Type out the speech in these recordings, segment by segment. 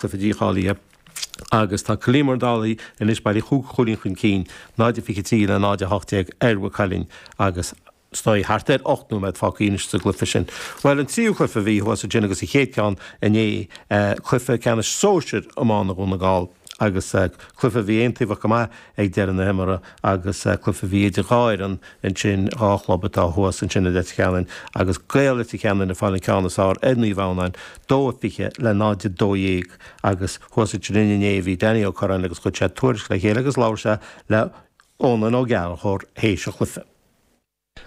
cluiche leathcheannais agus tá Cill Íomair Dálaigh anois bailithe chúig chúilín chun cinn, 0 de 23 le 0 de 18, ar Mhaigh Cuilinn agus is dóigh thart ar ocht nóiméad fágtha anois sa gcluiche sin. Bhuel an tríú cluiche a bhí thuas ansin agus an chéad ceann inné, cluiche ceannais sóisir iomána Dhún na nGall agus cluiche a bhí aontaobhach go maith, ag deireadh na himeartha agus cluiche a bhí idir dhá fhoireann ansin, dhá chlub atá thuas ansin i Leitir Ceanainn agus Gaeil Leitir Ceanainn ag fáil an ceann is fearr ar Naomh Adhamhnáin, 2-20 le 0-12 agus thuas ansin inné bhí Danny Ó Curráin agus chuir sé tuairisc le chéile agus labhair sé le Eunan Ó Gallchóir th'éis an chluiche.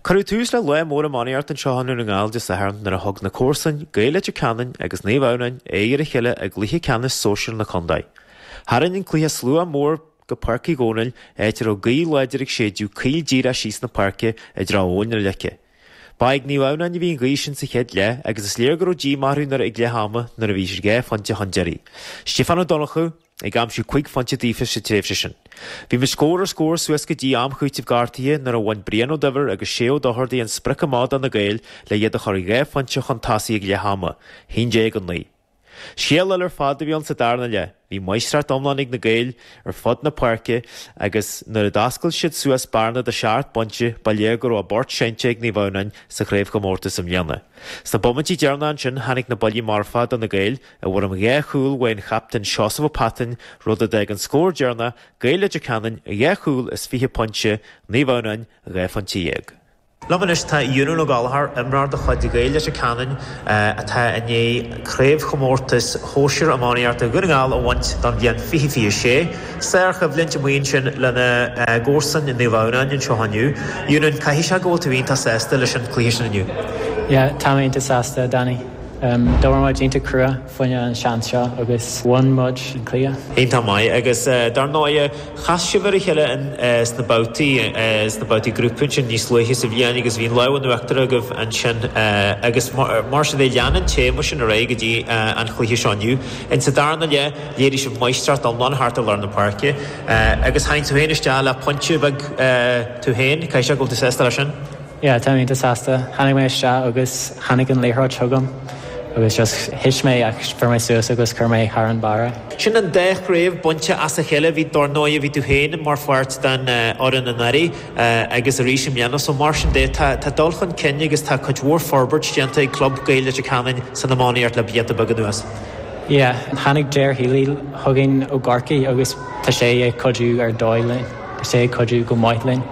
Cuireadh tús le lá mór iománaíocht anseo i nDún na nGall Dé Sathairn nuair a thug na comharsain, Gaeil Leitir Ceanainn agus Naomh Adhamhnáin, aghaidh ar a chéile i gcluiche ceannais sóisir na contae. Tharraing an cluiche slua mór go Páirc Uí Dhónaill, áit a raibh gaoth láidir ag séideadh caol díreach síos na páirce i dtreo Abhainn na Leice. Ba ag Naomh Adhamhnáin a bhí an ghaoth sin sa chéad leath agus is léir go raibh díomá orthu nuair a ag leath ama nuair a bhí siad dhá phointe chun deiridh, Stiofán Ó Donnchadha, ag aimsiú cúig phointe daofa sa tréimhse sin. Bhí muid scór ar scór suas go dtí am cúitimh gortaithe nuair a bhain Brian Ó Duibhir agus Shay Ó Dochardaigh an sprioc amach do na Gaeil le iad a chur dhá phointe chun tosaigh ag leath ama, haon déag, a naoi. Scéal eile ar fad a bhí ann sa darna leath. Bhí máistreacht iomlán ag na Gaeil ar fud na páirce agus nuair a d'oscail siad suas bearna de sheacht bpointe, ba léir go raibh a bport seinnte ag Naomh Adhamhnáin sa chraobhchomórtas i mbliana. Sna bomaintí deireanacha ansin tháinig na buillí marfa do na Gaeil, I bhfoirm dhá chúl ón chaptaen Seosamh Ó Pattain, rud a d'fhág an scór deireanach, Gaeil Leitir Ceanainn dhá chúl is fiche pointe, Naomh Adhamhnáin dhá phointe dhéag. Liom anois tá Eunan O'Gallagher, imreoir de chuid Ghaeil Leitir Ceanainn atá i ndiaidh Craobhchomórtas Shóisir Iománaíochta Dhún na nGall a bhaint don bhliain fiche fiche a sé. Sár-choimhlint a bhí ansin le na comharsain Naomh Adhamhnáin anseo inniu. Eunan, caithfidh sé go bhfuil tú iontach sásta leis an chluiche sin inniu? Yeah, tá mé iontach sásta, a Danny. D'obair muid iontach crua fá choinne an seans seo agus bhain muid an cluiche. Iontach maith agus dar ndóigh chas sibh ar a chéile sna babhtaí, sna babhtaí grúpa ansin níos luaithe sa bhliain agus bhí an lámh in uachtar agaibh ansin agus mar sin de lean an téama sin ar aghaidh go dtí an chluiche seo inniu. In sa darna leath léirigh sibh máistreacht iomlán thart ar lár na páirce agus tháinig tú féin isteach le pointe beag tú féin, caithfidh sé go bhfuil tú sásta leis sin? Yeah, tá mé iontach sásta. Tháinig mé isteach agus tháinig an liathróid chugam agus just thit mé ach fuair mé suas agus chuir mé thar an barra. Sin an dá chraobh bainte as a chéile, bhí dar ndóigh bhí tú féin mar pháirt den fhoireann anuraidh agus arís i mbliana so mar sin de tá dul chun cinn agus tá cuid mhór forbairt déanta ag club Gaeil Leitir Ceanainn san iománaíocht le blianta beaga anuas. Yeah, tháinig Ger Healy chugainn ó Chorcaigh agus tá sé ag cuidiú ar dóigh linn, tá sé ag cuidiú go maith linn.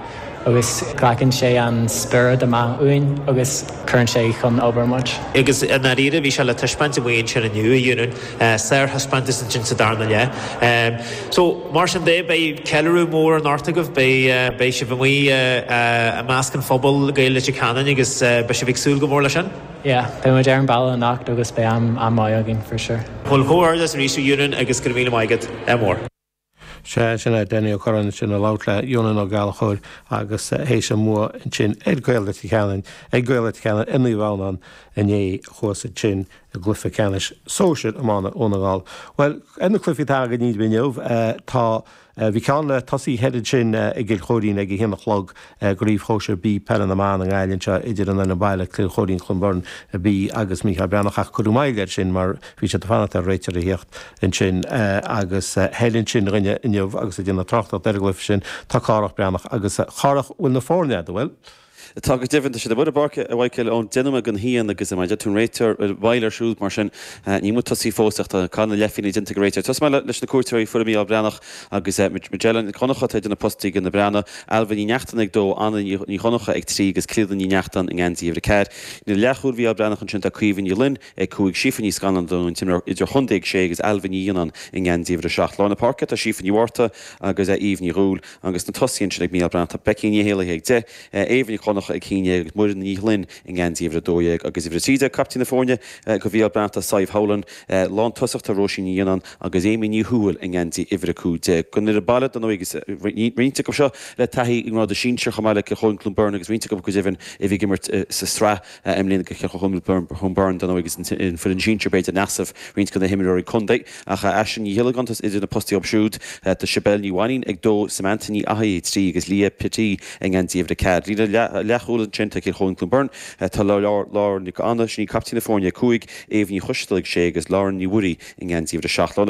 agus glacann sé an spiorad amach ionainn agus cuireann sé chun obair muid. Agus i ndáiríre, bhí sé le taispeáint amuigh ansin inniu, a Eunan, sárthaispeántas ansin sa darna leath. So, mar sin de, beidh ceiliúradh mór anocht agaibh, beidh sibh amuigh i measc an phobail Gaeil Leitir Ceanainn agus beidh sibh ag súil go mór leis sin? Yeah, beidh muid ar an mbaile anocht agus beidh am maith againn, for sure. Mo chomhghairdeas arís, a Eunan, agus go raibh míle maith agat. Ádh mór. Sé sin é Danny Ó Curráin ansin ag labhairt le Eunan Ó Gallchóir théis an bhua ansin ag Gaeil Leitir Ceanainn ag Gaeil Leitir Ceanainn i mBaile na nGallóglach inné thuas ansin i gcluiche ceannais Sóisir A iomána Dhún na nGall. Bhuel ar na cluichí atá againn inniu tá, bhí ceann le tosaí thoir ansin i gCill Choirín ag a haon a chlog, I gCraobh Shóisir B Peile na mBan i nGaillimh anseo idir an fhoireann baile, Kilkerrin-Clonberne B agus Mícheál Breathnach ach cuireadh moill air sin mar bhí siad ag fanacht ar réiteoir a thíocht ansin agus thoir ansin dhúinn inniu agus ag déanamh tráchtaireacht ar an gcluiche sin tá Cárthach Bán Breathnach agus Cárthach, bhfuil na foirne agat, bhfuil? Tá go deimhin, tá siad amuigh ar an bpáirc ag cur na n-ullmhúchán déanamh go dian agus mar a dúirt tú an réiteoir, bhí moill air siúd mar sin níl muid tosaithe fós ach tá caitheamh na leithphingine déanta ag an réiteoir. Tosóidh mé leis na cuairteoirí, foireann Mícheál Breathnach. agus Majella Nic Dhonncha, atá idir na postaí ag na Breathnaigh, Ailbhe Ní Neachtain, a dó, Anna Ní Dhonncha, a trí, agus Clíodhna Ní Neachtain, i ngeansaí uimhir a ceathair. Líne leathchúil Mhícheál Breathnach ansin tá Caoimhe Ní Fhloinn, a cúig, Síofa Ní Scanláin, ar ndóigh an t-imreoir, idir-chontae, a sé, agus Ailbhe Ní Ghionnáin, i ngeansaí uimhir a seacht. Lár na páirce tá Síofa Ní Mhárta agus Eve Ní Dhúill, agus sna tosaithe ansin ag Mícheál Breathnach tá Becky Ní hÉallaithe, a deich, Éabha Nic Dhonncha, a haon déag, agus Muireann Ní Ghloinn, i ngeansaí uimhir a dó dhéag. Agus uimhir a trí déag, caiptín na foirne, ag Mhícheál Breathnach tá Sadhbh Howlin, Lántosach tá Róisín Ní Ghionnáin agus Amy Ní Thuathail i ngeansaí uimhir 15 don fhoireann baile ar ndóigh tá roinnt acu seo le taithí i ngrád an tsinsir chomh maith le Kilkerrin-Clonberne agus roinnt acu go deimhin a bhí ag imirt sa sraith i mbliana do Kilkerrin-Clonberne ar ndóigh ag an foireann sinsir b'fhéidir in easnamh roinnt de na himreoirí contae ach Aisling Ní Ghiollagáin atá idir na postaí acu siúd tá Sibéal Ní Mhainín a 2 Samantha Ní Fhathaigh a 3 agus Leah Petty i ngeansaí uimhir 4 líne leathchúil ansin do Kilkerrin-Clonberne Tá Lauren Nic Anna, sin í caiptín na foirne 5, Aobh Ní Choistealbha a 6 agus Lauren Ní Mhuirí i ngeansaí uimhir 7 lár.